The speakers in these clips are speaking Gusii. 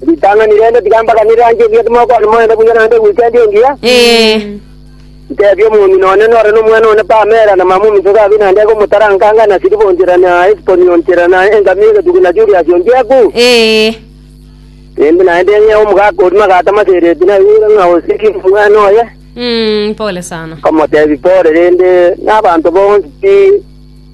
Ritang'ani rende tiga mbaganere anche buya timokwana moende buya naende weekend engiya, Ee. ntebie omong'ina one nore nomwana one Pamela na mama ominto Gabi naende eke omotaranka anga na Siliva onchera na Esboni onchera na engamia egetugi na Julius onchiaku. Ee. Naende naende ng'ea omogaka oria magato amasereti naigure ng'a osiki omwana oye, Mm, pole sana. nkamotebia pore rende nabanto bonsi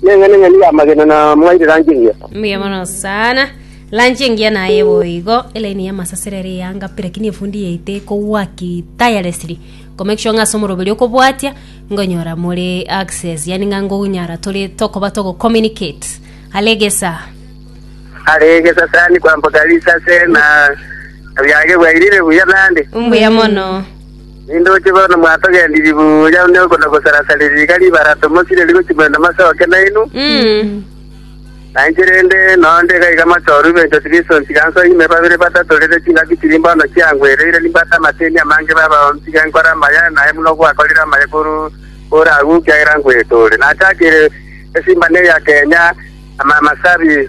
Neng'enang'eni y'amagena na mwaire lanchi engiya. Mbuya mono sana. Lanchi engiya naye boigo elaini y'amasasera ere eyanga pi lakini efundi yaito ekowaki tirelessly komake sure ng'a ase omoroberi okobwatia ngonyora more access yani ng'a ngonyara tore tokoba togocommunicate alegesa Arege sasa ni kwamboka risase na abiage bwairire buya nande. mbuya mono Nindoche bono mwatogendirie buya onde okona gosara-saria riiga ribarato mosireri gochia moino masoke nainwe, na inche rende noo ndega iga machoru ibenchwa tibisonsi tiga nsoe ime babere batato rere chingaki chiri mbono chiangwereire nimbate amateni amange babaoni tiga nkore amaya naye buna ogwakorire amaya korwa ore agwo kiagera nkwete ore. Nachakeire esimba ne eya Kenya, amamasabi,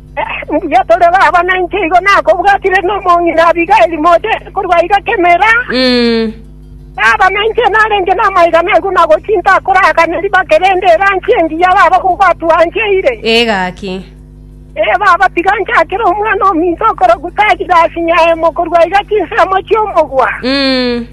Mbuya tore baba, na inche igo nakobwatire nomong'ina Abigaili mochete korwa iga kemera. Baba, na inche narenge namaiga naigwe buna gochia intakoragane ribake rende erangi engiya baba gogwatwancheire. Ee gaki. Ee baba, tiga nchakere omwana ominto okorokwa Taji Rasi Nyaemo korwa iga chinsemo chi'omogwa.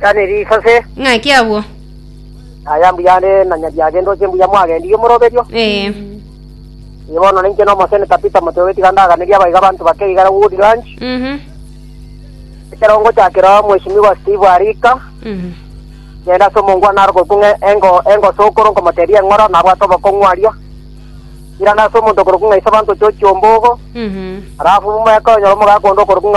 Chani risase. Ng'aki agwo. Aya mbuya are na nyabiage ndoche mbuya mwagendirie omoroberio. Eh. Ibono ninche no moseneta Peter Moteo getiga ndaganerie abaiga abanto bake igara Wood Ranch. Mhm. Ekero ngochakera Mheshimiwa Steve Arika. Mhm. Genda ase omongwa naro gokung'e engo engo sokoro nkomoteria eng'ora na abwate obokong'u aria. Irana ase omonto korokung'e ise abanto chochi ombogo. Mhm. Alafu mumweka onyora omogaka ondo okorokung'e